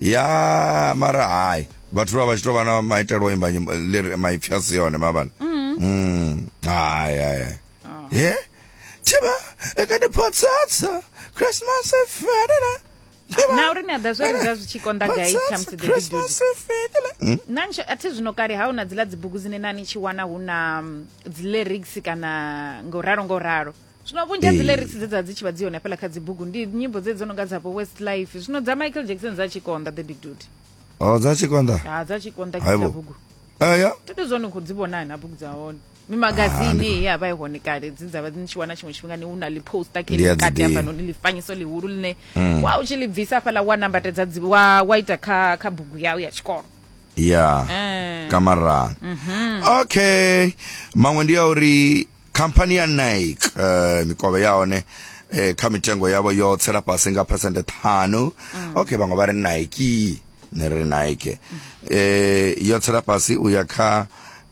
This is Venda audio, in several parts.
ya mara hai vhathu vha vha tshi tou vha na maitelo imba nyimbo ḽiri maipfi a si yone mavhana Mm. hai hai hai. ye thiba ekadiphotsatsa christmas ifedela na uri ni a ḓa zwo ri zwa zwi tshi konḓa gai khamusi the big dude na nsho a thi zwino kale ha una dziḽa dzibugu dzine na ni tshi wana hu na mm, dzi lyrics kana ngo ralo ngo ralo zwino vhunzhi ha dzi lyrics dze dza dzi tshi vha dzi hone hafhaḽa kha dzibugu ndi nyimbo dze dzo no nga dzavho west life zwino dza michael jackson dza tshikonda the big dude o dza tshikonda ha dza tshikonda kha bugu eya to to zwone khou dzi vhona na bugu dza hone mimagazini ah, ya vha i hone kale dzi dzavha dzi tshi wana tshiṅwe tshifhinga ni hu na ḽi poster ke kati hafha noni ḽifanyiso ḽihulu ḽine mm. wa u tshi ḽi bvisa hafhaḽa wa nambatedza wa wa ita kha kha bugu yau ya tshikolo ya eh. kamarang mhm. okay maṅwe ndi ya uri khamphani ya nike eh mikovhe ya hone eh kha mitengo yavho yo tsela fhasi nga percent ṱhanu okay vhaṅwe vha ri nike ne ri nike eh yo tsela fhasi u ya kha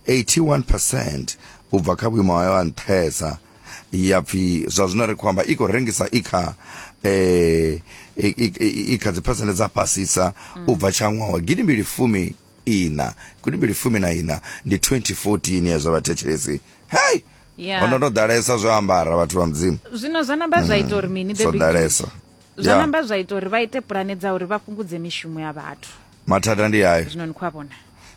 81% u bva kha vhuimo hayo ha nṱhesa ya pfi zwa zwino ri khou amba i khou rengisa i kha eh i- i- i- i kha dzi percent dza fhasisa u bva tsha ṅwaha wa gidimbili fumi ina kuti mbili fumi na ina ndi 2014 ya zwa vhathetshelesi hei Yeah. ono no ḓalesa zwo ambara vhathu vha mudzimu zwino zwa namba zwa ita uri mini the zwo big ḓalesa fish? zwa Ya. namba zwa ita uri vha ite pulane dza uri vha fhungudze mishumo ya vhathu mathada ndi ayo zwino ni khou a vhona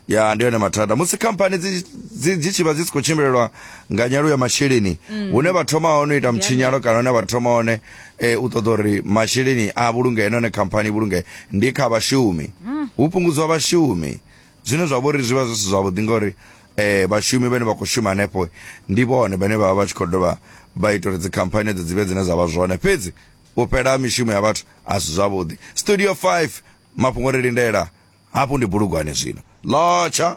ya ndi yone mathada musi khamphani dzi- dzi dzi tshi vha dzi si khou tshimbilelwa nga nyalo ya masheleni hune vha thoma hone u ita mtshinyalo kana hune vha thoma hone e, u ṱoḓa uri masheleni a vhulungee na hone khamphani i vhulungee ndi kha vhashumi hu fhungudzwa vhashumi zwine zwa vhori zwi vha zwi si zwavhuḓi ngauri eh vhashumi vhane vha khou shuma hanefho ndi vhone vhane vha vha vha tshi khou dovha vha ita uri dzikhamphani edzo dzi vhe dzine dza vha zwone fhedzi u fhela ha mishumo ya vhathu a si zwavhuḓi studio 5 mafhungo ri lindela hafhu ndi bulugwane zwino lotsha